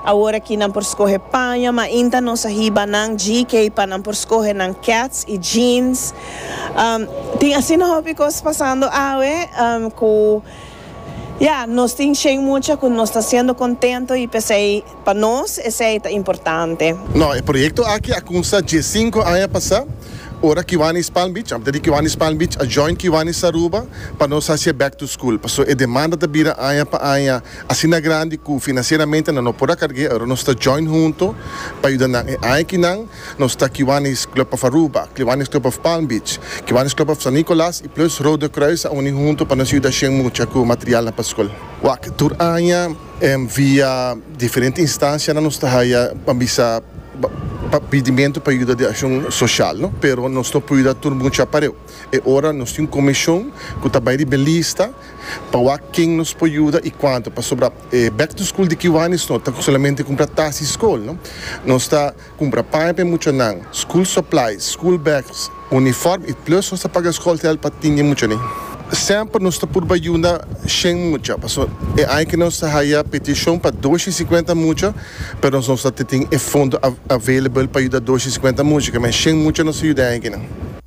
Awor aki nan por skohe paña, mainta nos a hiba nan GK pa nan por skohe nan kets i jeans. Tin asina hopi kos pasando awe ku ya, nos tin shen mucha ku nos ta siendo kontento i p'esei pa nos esei ta importante. No, e proyekto aki a kumsa diessinko aña pasá, ora Kiwanis Palm Beach, antes di Kiwanis Palm Beach, a join Kiwanis Aruba pa nos hasié back to school. Paso e demanda ta bira aña pa aña. Asina grandi cu financieramente nan no por a carge, aroa nos ta join hunto pa yuda nan. E añakinan nos ta Kiwanis Club of Aruba, Kiwanis Club of Palm Beach, Kiwanis Club of San Nicolas y plus Rode Kruis a uni hunto pa nos yuda shen mucha cu materialnan pa school. Wak, tur aña via diferente instancianan nos ta haya pa bisa pidimento pa yuda di accion social, no? Pero nos no por yuda tur mucha pareu. E ora nos tin un comishon cu ta bay di belista pa wak ken nos por yuda y cuanto, pasobra e back to school di Kiwanis no ta solamente cumpra tas y scol no, nos ta cumpra paña pa e muchanan, school supplies, school bags, uniform y plus nos ta paga scol geld pa tin e muchanin. Semper nos ta purba yunda shen mucha, paso e aña que nos ta haya peticion pa dos y cincuenta mucha, pero nos no ta tin e fondo available pa yuda dos y cincuenta mucha, kiman shen mucha nos ta yuda e aña kinan.